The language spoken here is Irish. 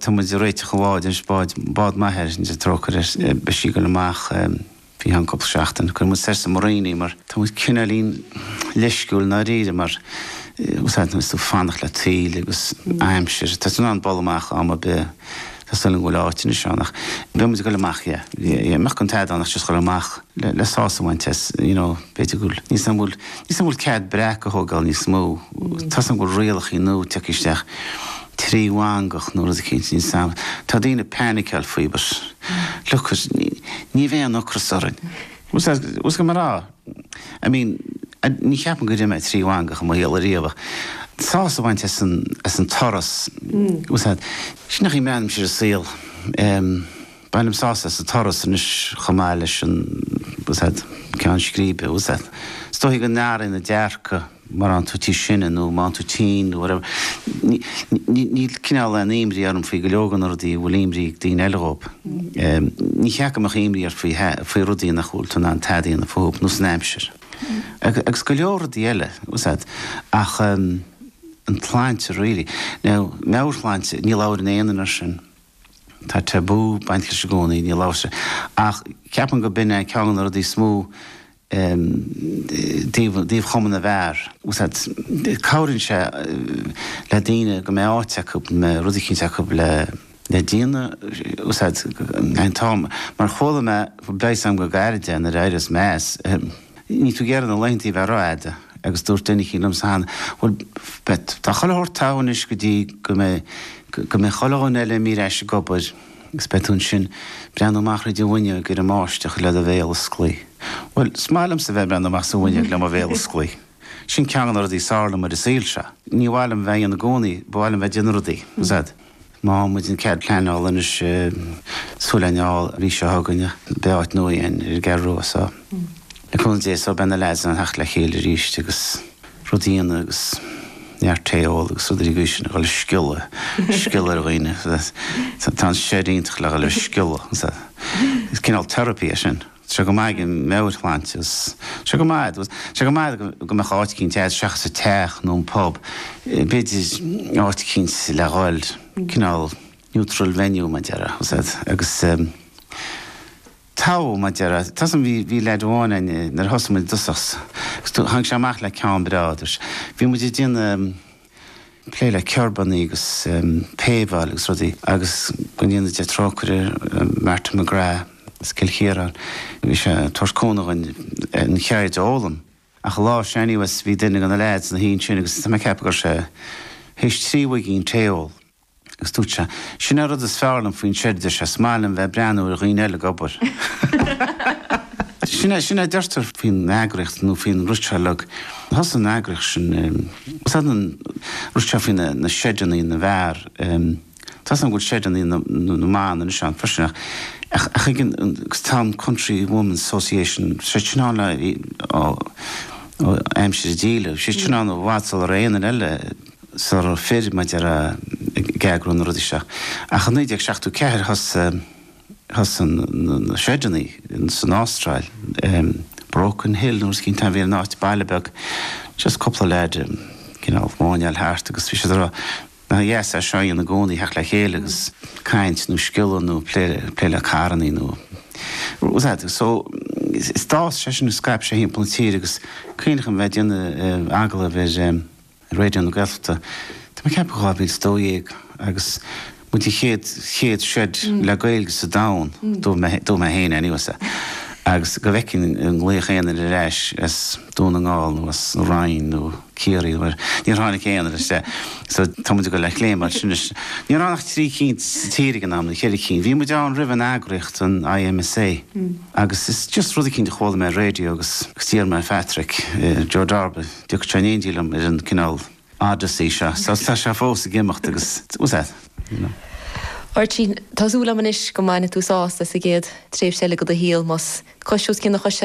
Tá muid réiteach a bhád, ar spáid, bád maith ar sin Dia trócaire air beidh sí goil amach faoi cheann cúpla seachtain. Cuirfidh muid soir sa marina mar tá muid cineáilín leisciúil i ndáiríre mar úsáideann muid tú fanacht le taoille agus aimsir. Tá tú in ann dul amach am ar bith. Tá súil agam go bhfuil áit anois ann ach beidh muid ag goil amach yeah, yeah. Mura mbeadh tada ann ach just goil amach. le sásamh a bhaint as, you know, b'fhéidir go bhfuil, níl a fhios agam an bhfuil, níl a fhios agam an bhfuil cead breac a thógáil níos mó, tá a fhios agam go bhfuil rialachaí nua ag tíocht isteach trí mhangach nó rud eicínt, níl a fhios agam, tá daoine painiceáil faoi but look at, ní bheidh aon ocras orainn. What's that, what's go mbeidh a rá, I mean, ní cheapaim gur ith mé trí mhangach i mo shaol ariamh ach sásamh a bhaint as an, as an turas, tá a fhios agat, sin é an chaoi a mbreathnaímse ar an saol, eh. Bainim sásamh as an turas anois chomh maith leis an gceann scríbe. Is dóichí go n-athraíonn an dearcadh nuair a bhíonn tú níos sine nó má bhíonn tú tinn nó whatever. Níl cineál aon imní orm faoi go leor de na rudaí a bhfuil imní ar dhaoine eile dhóibh. Ní ceart go mbeadh imní ort faoi rudaí nach bhfuil tú in ann tada a dhéanamh fúthub nós an aimsir. Agus go leor rudaí eile. Ach an tsláinte really. Now, meabhairshláinte, ní labhaireann aoinne ar sin. Tá tabú ag baint leis i gcónaí, níl amhras ach ceapaim gur b'in é ceann de na rudaí is mó dtaobh Chumann na bhFear. Tá a fhios agat, cabhraíonn sé le daoine go mbeidh áit acu, go mbeidh rud eicínt acu le déanamh, tá a fhios agat, an t-am, mar chuala mé, breis am go gairid é nuair a éirios mé as, Níl tú ag iarraidh na laetheantaí a bheith rófhada agus dúirt duine eicínt liomsa cheana Bhuel pet, tá chuile shórt togha anois go dtí go mbeidh, go mbeidh chuile dhuine eile imithe ar ais ag obair agus beidh tú ansin ag breathnú amach thríd an bhfuinneoig ar an mbáisteach le do bhéal oscailte. Bhuel, is maith liomsa a bheith ag breathnú amach sa bhfuinneoig le mo bhéal oscailte. Sin ceann de na rudaí is fearr liom ar an saol seo. Níor mhaith liom a bheith dhá dhéanamh i gcónaí, ba mhaith liom a bheith ag déanamh rudaí. Tá a fhios agat. Má fhaigheann muid an cead pleanála anois súil an fheall arís seo chugainn beidh áit nua againn ar an gCeathrú Rua so le cúnamh Dé so beidh na lads in ann a theacht le chéile arís agus rudaí a dhéanamh agus neart tae a ól agus rud uilig aois sin a dhul ag sciolladh sciolladh ar dhaoine tá an shed iontach le dhul ag sciolladh is cineál therapy é sin. sé go maith ag meabhairshláinte agus sé go maith sé go maith go mbeadh áit eicínt agat seachas an teach nó an pub b'fhéidir áit eicínt le dhul cineál neutral venue mar a déarfá tá a fhios agat agus togha mar a déarfá tá a fhios agam bhí bhí lad amháin ann nuair a thosaigh muid i dtosach agus tháinig sé amach le ceann breá dúirt sé bhí muid ag déanamh plé le kerbannaí agus paveáil agus rudaí agus go ndéana Dia trócaire ar Martin McGrath as Cill Chiaráin. Bhí sé ag tabhairt cúnamh dhúinn an cheird a fhoghlaim. Ach an lá sin anyways bhí duine de na leaids ina shuí ansin agus tá mé ag ceapadh go raibh sé théis trí mhuigín tae a ól. Agus dúirt sé, Sin an rud is fearr liom faoin seid, is maith liom bheith ag breathnú ar dhaoine eile ag obair. Sin é, sin é a deirtear. Faoin eagraíocht nó faoin rud seo a leag, thosaigh an eagraíocht sin, is é an rud seo faoi na seideannaí na bhfear, tá's agam go bhfuil seideannaí na mban anois ann freisin ach, ach, ach ag an, agus tá an Country Women's Association, sé sin ann le, ó, ó aimsir na díleann, sé sin ann i bhfad sular aon duine eile, sular fir maidir le ag eagrú na rudaí seo. Ach i naoi déag seachtó ceathair thosaigh thosaigh na seideannaí san Ástráil em Broken Hill nó rud eicínt a bhí an áit baile beag just cúpla leaids em you know ag máinneáil thart agus bhí siad a' rá nach dheas é seo a dhéanamh i gcónaí theacht le chéile agus caint nó sciolladh nó plé plé le carrannaí nó whatever so d'fhás sé sin scaip sé timpeall na tíre agus cuimhním a bheith a' déanamh eh agallaimh ar em Raidió na Gaeltachta, tá mé ag ceapadh 2012, agus muid an chéad, chéad seid le Gaeilge sa domhan, dúirt mé, dúirt mé féin anyway sa, agus go bhfeicfinn aon ghlaoch ar ais as Dún na nGall nó as an Rinn nó Ciarraí ach níor tháinig aon rud, sea. So tá muid ag dul le chéile mar sin anois. Ní raibh ach trí cinn sa tír ag an am, nó ceithre cinn. Bhí muid ann roimh an eagraíocht, an IMSA, agus is just rud eicínt a chuala mé ar raidió agus agus d'iarr mé ar Phatrick, Joe Darby, An dtiocfadh sé in éindí liom ar an cineál Odyssey seo. So tá sé fós ag imeacht agus you know. Máirtín, Tá súil agam anois go mbainfidh tú sásamh as an gcéad tréimhse eile de do shaol, más cos os cionn na coise.